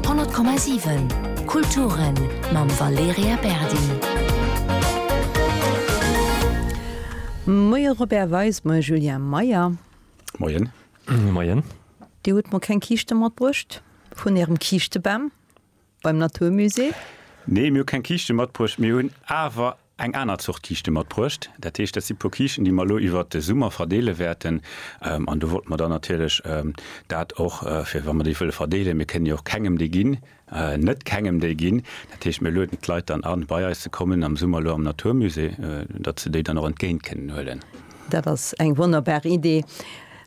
100,7 Kulturen mam Valerija Berdi. Moie Robert Weis, moie Julien Meyer. Moien. Moien. Dir hutt mer keng Kiischte matbruecht vun ärem Kiischtebam. Beim natur musée? Nee, mir hu keng Kiischte matbruecht. Mir hunn awer eng aner Zort Kiischte matbruecht. Dat heescht, dat si puer Kiischten, déi mer elo iwwert de Summer verdeele wäerten. An do wollte mer dann natierlech dat och fir wa mer déi wëlle verdeelen, mir kënnen déi och kengem déi ginn, net kengem déi ginn. Dat heescht, mir lueden d'Leit dann an, bei eis ze kommen am Summer elo am natur musée, datt se déi dann och entgéint kënnen huelen. Dat ass eng wonnerbar Idee.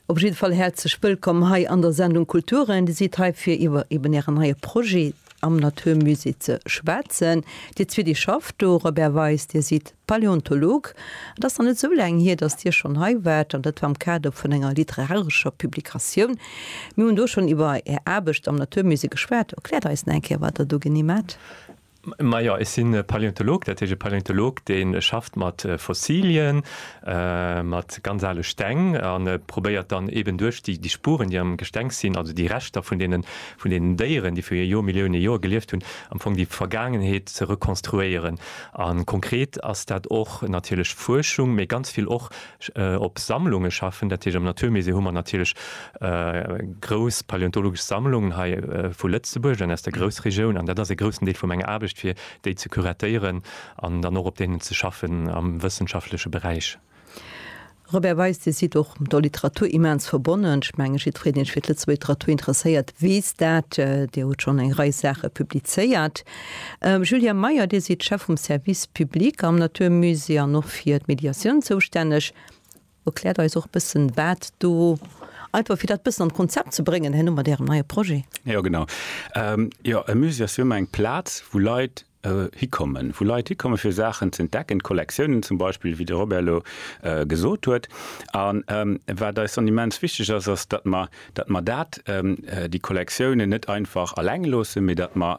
Op jidde Fall häerzlech wëllkomm hei an der Sendung Kulturen. Dir sidd hei fir iwwer eben ären neie Projet am Natur Musée ze schwätzen. Dir zwee, dir schafft do, Robert Weis, dir sidd Paläontolog. Et ass nach net esou laang hier, datt dir schonn hei waart an dat war am Kader vun enger literarescher Publikatioun. Mir hunn do schonn iwwer är Aarbecht am Natur Musée geschwat. Erkläert eis nach eng Kéier, wat der do genee maacht. Majo, ech sinn e Paläontolog, dat heescht e Paläontolog, dee schafft mat Fossilien, mat ganz ale Steng a probéiert dann eeben duerch déi Spuren, déi am Gestengs sinn, also déi Reschter vun deenen, vun deenen Déieren, déi viru Jormillioune Joer gelieft hunn, am Fong déi Vergaangenheet ze rekonstruéieren. A konkret ass dat och natierlech Fuerschung, mee ganz vill och op Sammlunge schaffen. Dat heescht am Naturmusée hu mer natierlech grouss paleontologesch Sammlungen hei vu Lëtzebuerg an aus der Groussregioun an dat ass e groussen Deel vu menger Aarbecht, fir déi ze curatéieren an dann och op deenen ze schaffen am wëssenschaftleche Beräich. Robert Weis, Dir sidd och der Literatur immens verbonnen. Ech menge jiddwereen, deen sech fir d'Lëtzebuerger Literatur interesséiert, weess dat. Dir hutt schonn eng Rei Saache publizéiert. Julia Meyer, Dir sidd Chef vum Service public am Natur Musée an och fir d'Mediatioun zoustänneg. Erkläert eis och e bëssen, wat do, einfach fir dat e bëssen an d'Konzept ze bréngen herno mat Ärem neie Projet. Jo, genau. Jo, e Musée ass jo ëmmer eng Plaz, wou Leit hikommen, wou Leit hikommen, fir Saachen z'entdecken, d'Kollektiounen zum Beispill, wéi de Robert elo gesot huet. An wat eis dann immens wichteg ass, ass, datt mer datt mer dat, déi Kollektiounen net einfach alleng loossen, mee datt mer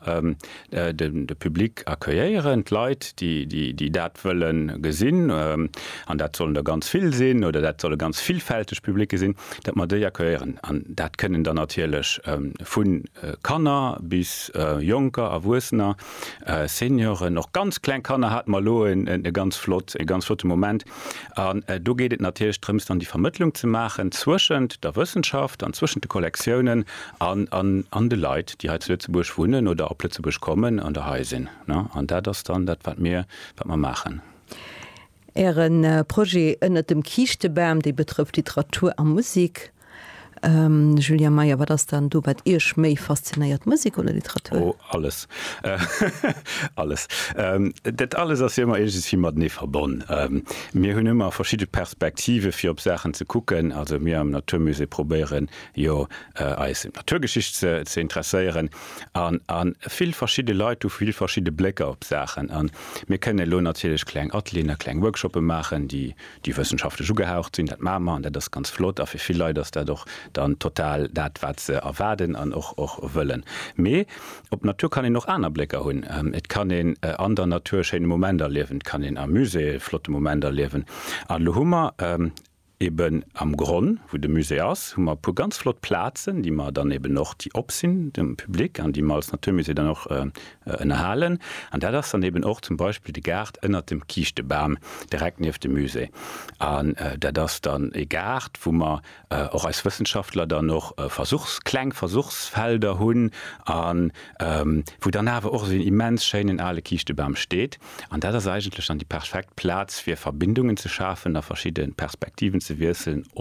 de Public accueillieren, d'Leit, déi dat wëlle gesinn, an dat sollen der ganz vill sinn oder dat solle ganz villfälteg Publicë sinn, datt mer déi accueillieren. An dat kënnen dann natierlech vu Kanner bis Jonker, Erwuessener, Senioren, och ganz kleng Kanner hate mer elo e ganz flott, e ganz flotte Moment, An do geet et natierlech drëms, dann déi Vermëttlung ze maachen zwëschent der Wëssenschaft an zwëschent de Kollektiounen an de Leit, déi hei zu Lëtzebuerg wunnen oder op Lëtzebuerg kommen an der hei sinn. An dat ass dann dat, wat mir maachen. Äre Projet ënnert dem Kiischtebam, dee betrëfft Literatur a Musek. Julien Meyer, Wat ass dann do wat Iech méi faszinéiert, Musek oder Literatur? Oh alles. Alles. Dat alles ass jo ëmmer iergendwéi matenee verbonn. Mir hunn ëmmer verschidde Perspektive fir op Saachen ze kucken. Also mir am Natur Musée probéieren jo eis fir d'Naturgeschicht ze interesséieren an vill verschidde Leit hu vill verschidde Blécker op Saachen. An mir kënnen elo natierlech kleng Atelieren a kleng Workshoppe maachen, déi déi wëssenschaftlech ugehaucht sinn, dat maache mer an dat ass ganz flott a fir vill Leit ass dat och dann total dat wat se erwaarden an och och wëllen. Mee op d'Natur kann een och aner Blécker hunn. Et kann een an der Natur e schéine Moment erliewen, et kann een am Musée e flotte Moment erliewen an elo hu mer eben am Gronn, wou de Musée ass, hu mer e puer ganz flott Plazen, déi mer dann eben och, déi op sinn dem Public an déi mer als Naturmusée dann och Ënnerhalen, an dat ass dann eben och zum Beispill de Gaart ënnert dem Kiischtebam, direkt nieft dem Musée. An dat ass dann e Gaart, wou mer och eis Wëssenschaftler dann och Versuchs-, kleng Versuchsfelder hunn a wou dann awer och esou en immens schéinen ale Kiischtebam steet. An dat ass eigentlech dann déi perfekt Plaz, fir Verbindungen ze schafen a verschidde Perspektiven ze wiesselen.